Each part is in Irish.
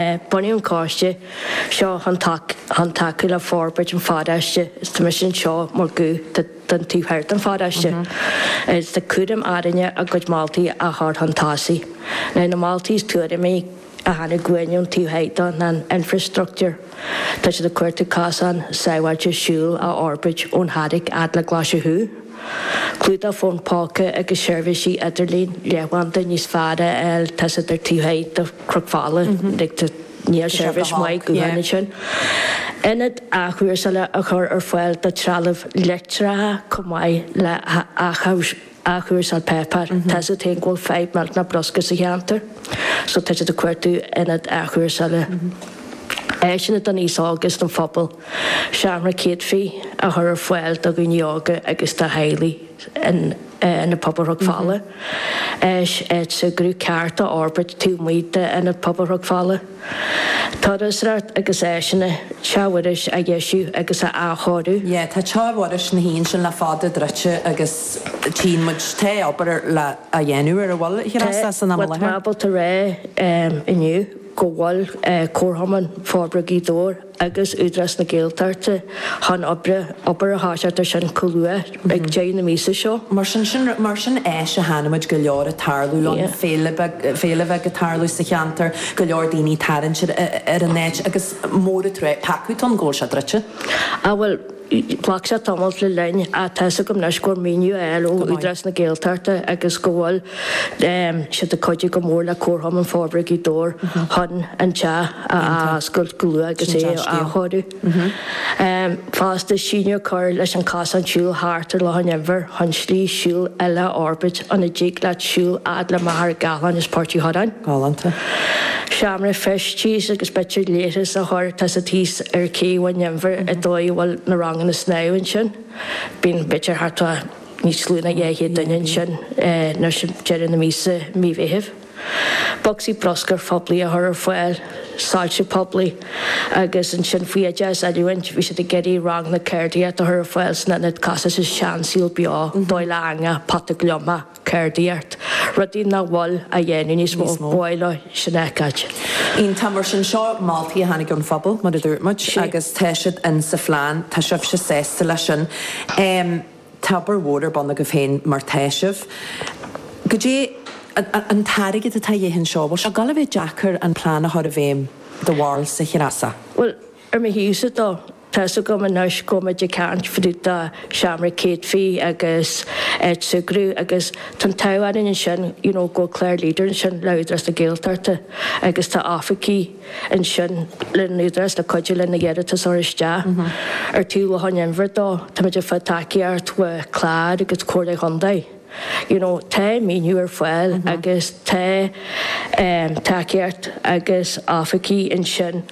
Bunaíodh an coiste seo chun tacú le forbairt an pharóiste is tá mise anseo mar ghuth don taobh thoir den pharóiste is tá cúram orainne a gcuid moltaí a chur chun tosaigh. Ar na moltaí is tuairimí a tháinig chugainn ón taobh thoir dó ná an infreastruchtúr. Tá siad ag cuartú cosán sábháilte siúil a fhorbairt ón Charraic a fhad le Glaise Chú. Clúdach fón póca agus seirbhísí idirlín leathanbhanda níos fearr a fháil, tá's agat, ar an taobh thoir dó. Cnoc Fola, Dicta, Níl seirbhís maith go háirid ansin. Ionad athchúrsála a chur ar fáil do threalamh leictreacha chomh maith le hathchúrsáil páipéir. Tá's agat féin go bhfuil fadhb maidir le bruscar sa cheantar, so tá siad ag cuartú ionad athchúrsála. Áiseanna don aos óg is don phobal. Seomra céadfaí a chur ar fáil do dhaoine óga agus do theaghlaigh in Ionad Pobail Chnoc Fola. Áis súgartha ceart a fhorbairt taobh amuigh d'Ionad Pobail Chnoc Fola. Turasóireacht agus áiseanna Teach Mhuiris a dheisiú agus a athchóiriú. Yeah, tá Teach Mhuiris ansin le fada druidte agus tchíonn muid tá obair le déanamh air a bhfuil a ghrá sa san am i láthair. Tá muid ábalta a rá inniu go bhfuil Comharchumann Forbartha Ghaoth Dobhair, agus Údarás na Gaeltachta chun oibre, obair a thoiseacht ar sin chomh luath ag deireadh na míosa seo. Mar sin, sin, mar sin áis a chonaic muid go leor ag tarlú ann, féile beag, féile bheag ag tarlú sa cheantar, go leor daoine ag tarraingt ar, ar an áit agus mór an tr, peacadh, tá's agat, go bhfuil sé druidte. Ah bhuel, Ghlac sé tamall le linn ach tá's agam anois go bhfuil maoiniú á fháil ó Údarás na Gaeltachta agus go bhfuil siad ag cuidiú go mór le Comharchumann Forbartha Ghaoth Dobhair chun an teach a athoscailt go luath agus é a athchóiriú. Fosta, síneadh a chur leis an chosán siúil thart ar Loch an Inbhir chun slí siúil eile a fhorbairt ina dtig leat siúl a fhad le Machaire Gathlán is Port Uí Chuirreáin. Seomra feistis agus b'fhéidir leithris a chur, tá's agat, thíos ar Cé Bhun an Inbhir ar ndóigh a bhfuil na ranganna snámha ansin. Bíonn b'fhéidir thart fá níos lú ná dhá chéad duine ansin nuair is deireadh na míosa, mí Mheithimh. Bocsaí bruscair phoiblí a chur ar fáil, soilse poiblí agus ansin faoi oideachas, oiliúint, bhí siad ag iarraidh ranganna ceardaíochta a chur ar fáil san ionad casaidh sa seansaol beo, dáil eangach, pota gliomach. ceardaíocht, rudaí nach bhfuil á dhéanamh níos mó, ba mhaith linn sin a fheiceáil. iontach. Mar sin, seo moltaí a tháinig ón phobal, mar a dúirt muid, agus tá siad in sa phlean. Tá sibhse sásta leis sin? Tá obair mhór ar bun agaibh féin mar tá sibh. Caidé an t-airgead atá de dhíth anseo, bhfuil sé ag gabháil a bheith deacair an plean a chur i bhfeidhm do bharúilse, a Threasa? Bhuel, ar mo thaobhsa de, Tá's agam anois go mbímid ag caint fá dtaobh de sheomra céadfaí agus áit súgartha agus tá'n t-ádh orainn ansin you know go bhfuil Clare Leader ansin le Údarás na Gaeltachta agus tá oifigí ansin le an Údarás le cuidiú lena hiarratais a chur isteach. Ó thaobh Loch an Iúir de táimid ag fáil tacaíocht ó Clare agus Comhairle Chondae. you know tá maoiniú ar fáil agus tá tacaíocht agus oifigí ansin.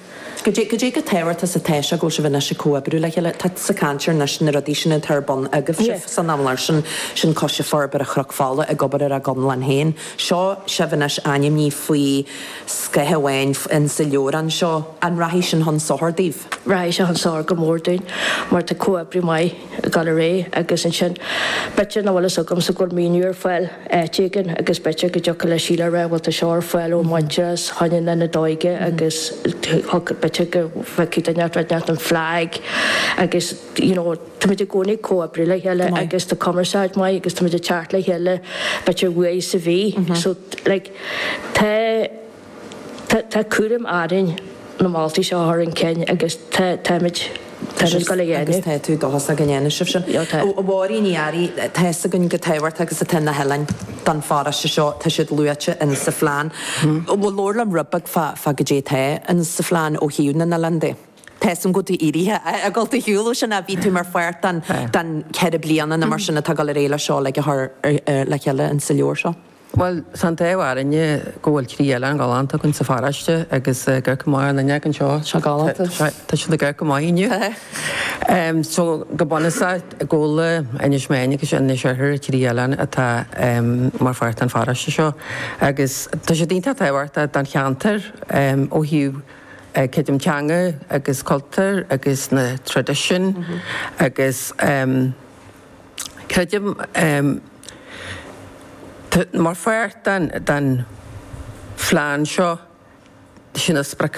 Goidé goidé chomh tábhachtach is atá sé go bhfuil sibh anois ag comhoibriú le chéile, tá sibh ag caint ar anois na rudaí sin atá ar bun agaibh sibh san am i láthair sin, sin coistí Forbartha Chnoc Fola ag obair ar a gconlán féin. Seo sibh anois ainmní faoi scáth amháin in sa leabhrán seo. An rachaidh sin chun sochair daoibh? Rachaidh seo chun sochair go mór dúinn mar tá comhoibriú maith ag dul ar aghaidh agus ansin b'fhéidir, má bhfuil fhios agamsa go bhfuil maoiniú ar fáil áit éigin agus b'fhéidir go dtiocfadh le Síle a rá bhuel tá seo ar fáil ó Muintearas chóir a bheith le na hóige agus thiocfadh, b'fhéidir go bhfeicfeadh duine áit éigin an flag agus you know táimid i gcónaí ag comhoibriú le chéile agus tá cumarsáid mhaith agus táimid ag teacht le chéile b'fhéidir uair sa mhí so like tá Tá cúram orainn na moltaí seo a chur chun cinn agus táimid Táimid go léir agus tá dóchas againn go ndéanfaidh sibh sin. A Mháirín Uí Fhearraigh, tá fhios againn chomh tábhachtach agus atá na hoileáin don pharóiste seo, tá siad luaite in sa phlean. Bhuel labhair liom rud beag fá fá goidé atá in sa phlean ó thaobh na n-oileán de. Tá fhios agam go bhfuil tú éirithe as an ról ó shin ach bhí tú mar pháirt den den ceithre bliana nó mar sin atá ag dul ar aghaidh le seo a chur le chéile in sa leabhar seo. Bhuel, tá an t-ádh orainne go bhfuil trí oileán galánta againn sa pharóiste agus ag amharc amach an fhuinneog anseo. Tá galánta. Tá siad ag amharc go maith inniu. So go bunúsach Gabhla, Inis Meáin agus Inis Oirthir, trí oileán atá mar pháirt den pharóiste seo agus tá siad iontach tábhachtach don cheantar ó thaobh creidim teanga agus cultúr agus na traidisiúin agus. Creidim, mar pháirt den phlean seo, sin a spriocanna.